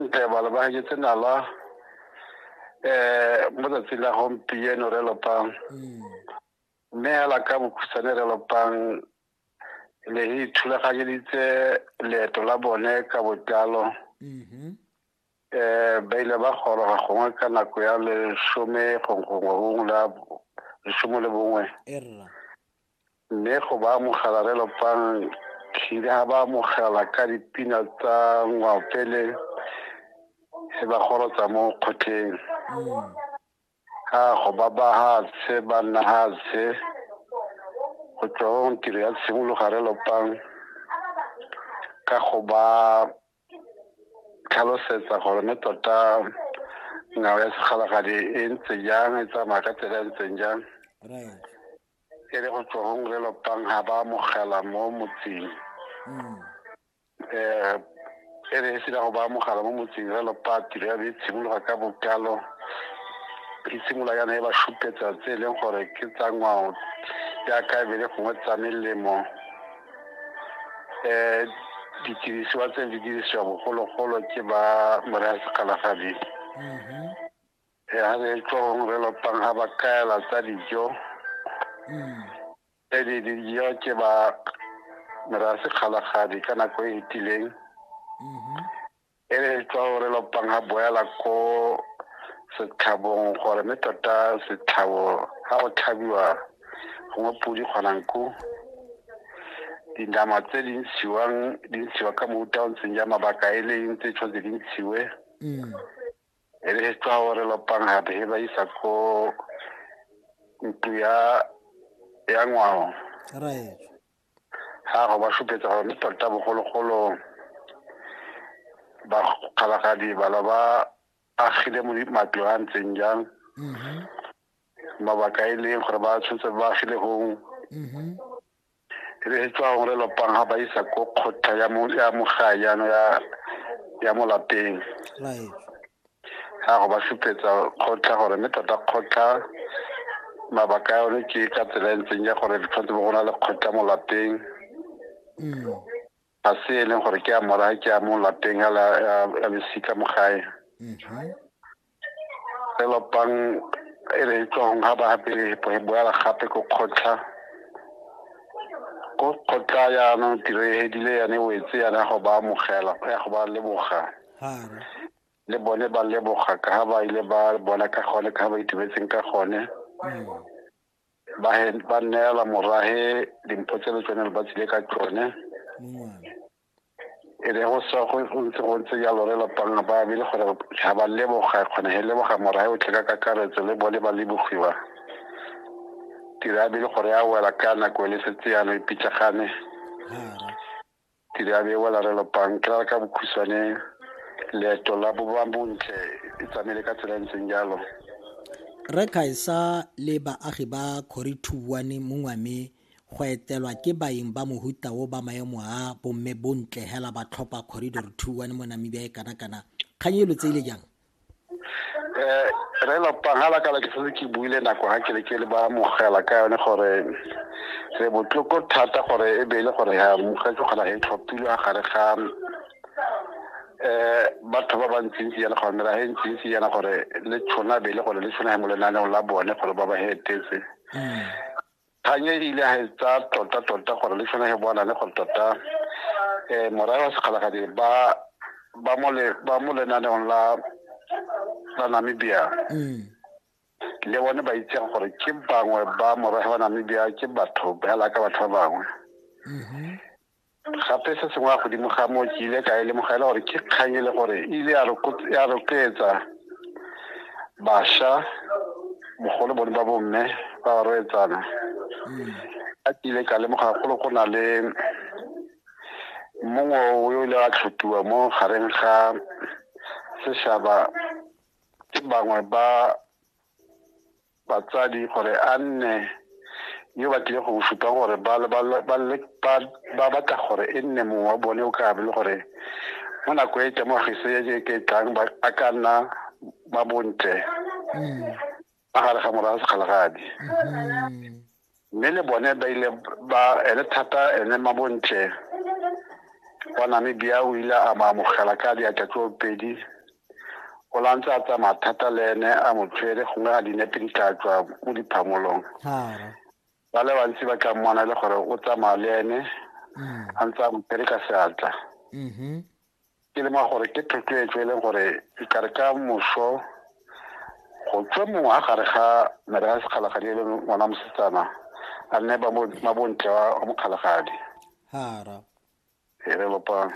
Ntebalo ba heketse nala um mo tsatsi la gompieno re lopang mm. mme hela ka bokhutshwane re lopang le re ithulaganyeditse leeto la bone ka botlalo mm-hmm. eh ba ile ba goroga gongwe ka nako ya lesome gongwe gongwe la lesome le bongwe Mme go ba amogela re lopang tlhile ha ba amogela ka dipina tsa ngwaopele e ba gorotsa mo kgotleng ha go ba ba hatshe ba nna hatshe go tswa tiro ya tshimologa re lopang ka go ba tlhalosetsa gore mme tota ngwao ya segalagadi e ntse jang e tsamaya ka tsela e ntseng jang e le go tswang re lopang ga ba amogela mo motseng um e re e sena go ba amogela mo motseng re lopa tiro ya be e tshimologa ka bokalo e simolola yana e ba šupetsa tse e leng gore ke tsa ngwao jaaka e be le gongwe tsa melemo um didirisiwa tse di dirisiwa bogologolo ke ba moreya sekgalafading e a re tlong re lopang ga ba kaela tsa dijo mm. tse di dijo ke ba mera sekgalagadi ka nako e etileng mm-hmm. e re tlong re lopang ga boela ko setlhabong gore mme tota setlhabo ga go tlhabiwa gongwe podi kgonang ko dinama tse di ntshiwang di ntshiwa ka mofuta o ntseng ja mabaka e leng tse tshwanetse di ntshiwe mm. e re tsa gore lopang gape he ba isa ko ntlo ya ya ngwao raetso ga go ba supetsa gore mme tota bogologolo bakgalagadi bala ba agile mo matlo a ntseng jang mabaka e leng gore ba tshwanetse ba agile gong e be e tswa gore lopang ga ba isa ko kgotha ya mogae yano ya mo lapeng ga go ba supetsa kgotla gore mme tota kgotla mabaka ya one ke ka tsela e ntseng ya gore tshwanetse bo go na le kgotla mo lapeng mm. ga se e leng gore ke a mora ke a mo lapeng ya losika mo gae mm-hmm. elopang e re e tswang ga ba apere e boela gape ko kgotlha ko kgotlha yaanong tiro e hedile yane wetse yana ya go ba amogela ya go ba leboga le bone ba leboga ka ga ba ile ba bona ka gone ka ga ba itumetseng ka gone ba neela morage dimpho tse le tsone le ba tsile ka tsone e re go sa go ntse go ntse jalo re lapang ba be le gore ga ba leboga kgona he leboga morae o tle ka kakaretso le bone ba lebogiwa tira a be le gore a wela ka nako e le setse yana e pitlagane tira a be e wela re lapang ke rara ka bokhuswane leeto la boba bontle e tsamaile ka tsela e ntseng jalo re kaisa le baagi ba corituane mongwame go etelwa ke baeng ba mohuta o ba maemo a bomme bontle hela ba tlhopha corridor two one mo namibia e kana-kana kgang e lo tse ile jang Eh, re lopang ga lakala ke setse ke buile nako ga ke le ke le ba mogela ka yone gore re botloko thata gore e be e le gore ya mogetse kgona e tlhophilwe a gare ga um batho ba bantsintsi yana gore mera e ntsintsi yana gore le tshona be e le gore le tshona mo lenaneng la bone gore ba ba hetetse mm. Kganye e ile ga e tsaya tota-tota gore le tshwanege bonane gore tota um morae wa sekgalagadi ba ba mo le ba mo lenaneong la la Namibia mm. le bone ba itseng gore ke bangwe ba morahe wa Namibia ke batho ba la ka batho ba bangwe mm-hmm. gape se sengwe ya godimo ga moo ke ile ka e lemoga e le gore ke kgang e le gore e ile ya rotloetsa basha mogolo bone ba bomme ba ba roetsana mm. a ke ile ka lemoga golo go na le mongwe o yo ile a tlhotiwa mo gareng ga seshaba ke bangwe ba batsadi gore a nne yo ba tlile go supa gore ba batla gore e nne mongwe wa bone o ka be le gore mo nako e temogiso e ke tlang ba ka nna ba bontle mm. magare ga morago sekgalagadi mm-hmm. mme le bone ba ile ba ele thata ene mabontle wa namibia o ile a ba amogela ka diatla tse pedi o la ntse a tsamaya thata le ene a mo tshwere gongwe a dinepe di tla tswa mo diphamolong ba le bantsi ba tla mmona e le gore o tsamaya le ene mm. a ntse a mo tshwere ka seatla mm-hmm. ke le ma gore ke thotloetso e leng gore ikare ka moso go tswe mongwe a gare ga mere a sekgalagadi e leng ngwana mosetsana a nne mabontle wa mokgalagadi hara e re lopang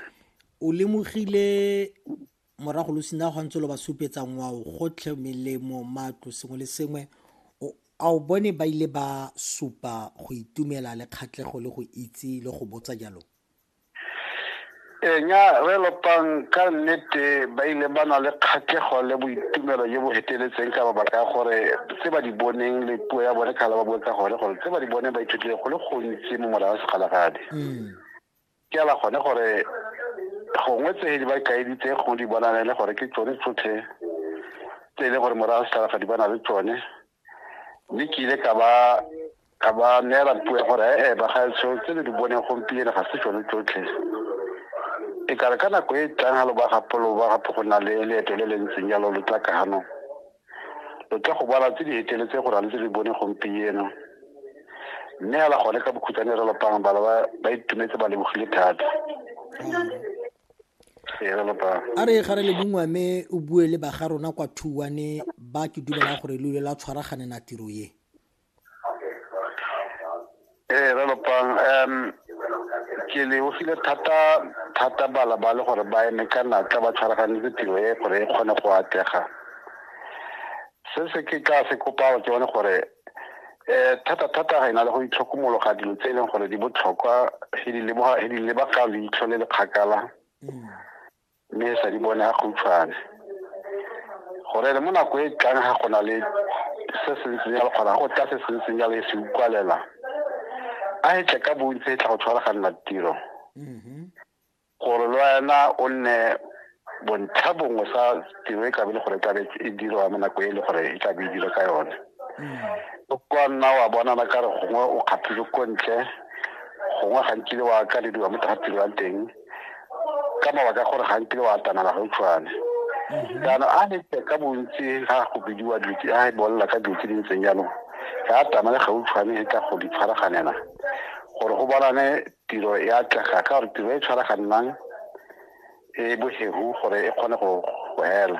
o lemogile morago lo sena go ntse lo ba supetsa ngwao gotlhe melemo matlo sengwe le sengwe a o bone ba ile ba supa go itumela le kgatlhego le go itse le go botsa jalo Ee, nya re lopang ka nnete ba ile ba na le kgatlhego le boitumelo jo bo feteletseng ka mabaka a gore tse ba di boneng le puo ya bone kgala ba bue ka gone gore tse ba di boneng ba ithutile go le gontsi mo morago segalagadi mm. ke ala gone gore gongwe tse di ba kaeditse gongwe di bonane le gore ke tsone tsotlhe tse e leng gore morago segalagadi ba na le tsone mme ke ile ka ba Ka ba neela puo ya gore ee bagaetsho tse le di boneng gompieno ga se tsone tsotlhe. E kare ka nako e tlang ga lo ba gape lo ba gape go na le leeto le le ntseng jalo lo tla kano lo tla go bala tse di heteletse gore a le tse di bone gompieno. Mme ala gone ka bokhutsane re lopang bala ba itumetse ba lebogile thata. a re ga re le bongwe mme o bue le baga rona kwa thuwane ba ke dumelang gore lo ile la tshwaraganela tiro ye ee re lopang um ke lebogile thata thata bala ba le gore ba eme ka natla ba tshwaraganetse tiro e gore e kgone go atlega se se ke ka se kopao ke bone gore um thata thata ga e na le go itlhokomologa dilo tse e leng gore di botlhokwa e di lebaga leitlho le le kgakala mm. mme e sa di bone a khutshwane gore le mo nako e tlang ga gona le se se ntseng jalo kgona go tla se se ntseng jalo e se ukwalela a e tle ka bontsi e tla go tshwaraganela tiro mm-hmm. gore le wena o nne bontlha bongwe sa tiro e tlabe le gore e tlabe e dirwa mo nako e le gore e tlabe e dira ka yone mm-hmm. o kwa nna wa bonana ka re gongwe o kgathile ko ntle gongwe gantsi le wa ka le diwa mo tira teng ka mabaka gore ga nkile wa atamela ga utshwane mhm. jaanong a nete ka bontsi ga go bidiwa dilo tse a e bolela ka dilo tse di ntseng jaanong ga atamele ga utshwane e ka go di tshwaraganela gore go bonane tiro e atlega ka gore tiro e tshwaraganang e bohegu gore e kgone go hela